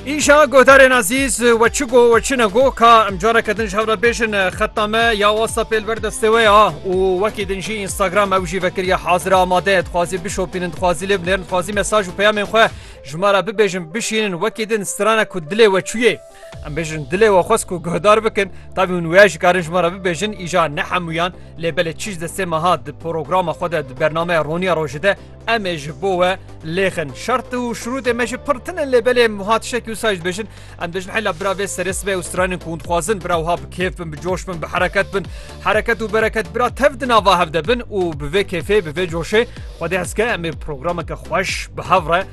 Îşa godarên azîz we çi go we çi ne go ka em careke din ji hev re bêjin xeta me ya whatsappê li ber destê we ya û wekî din jî instagram ew jî vekiriye hazira amade dixwazî bişopînin dixwazî lê binêrin dixwazî mesaj û peyamên xwe ji me re bibêjin bişînin wekî din strana ku dilê we çûyê Em bêjin dilê we xwest ku guhdar bikin, tevî hûn wêya jî karin ji me re bibêjin, îja ne hemûyan lê belê çî ji destê me hat di programa xwe de di bernameya Roniya Rojê de em ê ji bo we lêxin. Şert û şirûtê me jî pir tinin lê belê em wiha tiştekî wisa jî dibêjin. Em dibêjin heyla bira vê serê sibê û stranên ku hûn dixwazin bira wiha bi kêf bin, bi coş bin, bi hereket bin. Hereket û bereket bira tev di nava hev de bin û bi vê kêfê, bi vê coşê xwedê hezke em ê programeke xweş bi hev re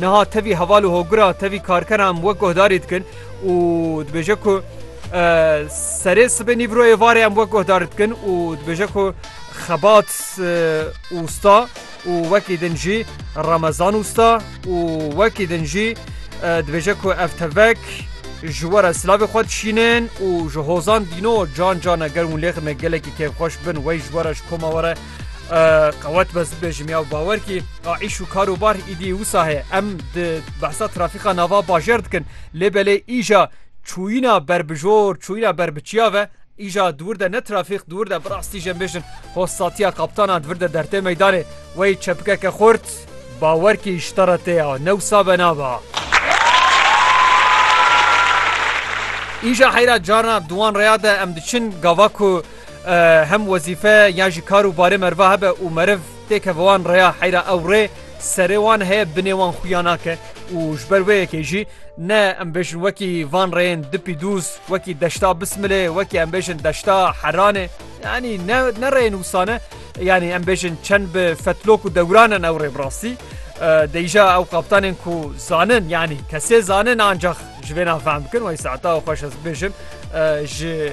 Niha tevî heval û hogura tevî karkeran em wek guhdarî dikin û dibêje ku serê sibê nîvroyê varê em wek guhdar dikin û dibêje ku xebat ûsta û wekî din jî remezan ûsta û wekî din jî dibêje ku ev tevek ji were silavê xwe dişînin û ji hozan dîno can cane ger hûn lêxime gelekî kêfxweş bin wey ji were ji koma were Qewet be zibê ji miyav bawer kî a îş û karobar îdî wisa heye. Em di behsa trafîka nava bajer dikin lê belê îja çûyîna berbijor, çûyîna berbiçiya ve îja di wir de ne trafîk di wir de birastî jê bêjin xo satiya kaptanan di vir de dertê meydanê wey çepikeke xurt bawer kî ji te re tê ya ne wisa be naba. Îja heyra carna di wan reya de em diçin gava ku Hem wezîfe ya jî kar û barê meriva hebe û meriv têke bi wan rêya heyra ew rê serê wan heye binê wan xuya nake û ji ber wê yekê jî ne em bêjin wekî van rêyên dipî dûz wekî deşta bismilê wekî em bêjin deşta heranê yanî ne ne rêyên wisane yanî em bêjin çend bi fetlok û dewranin ew rê bi rastî deyîja ew qaptanên ku zanin yanî kesê zanin ancax ji vê navfehm bikin wey saeta xweş ez bêjin ji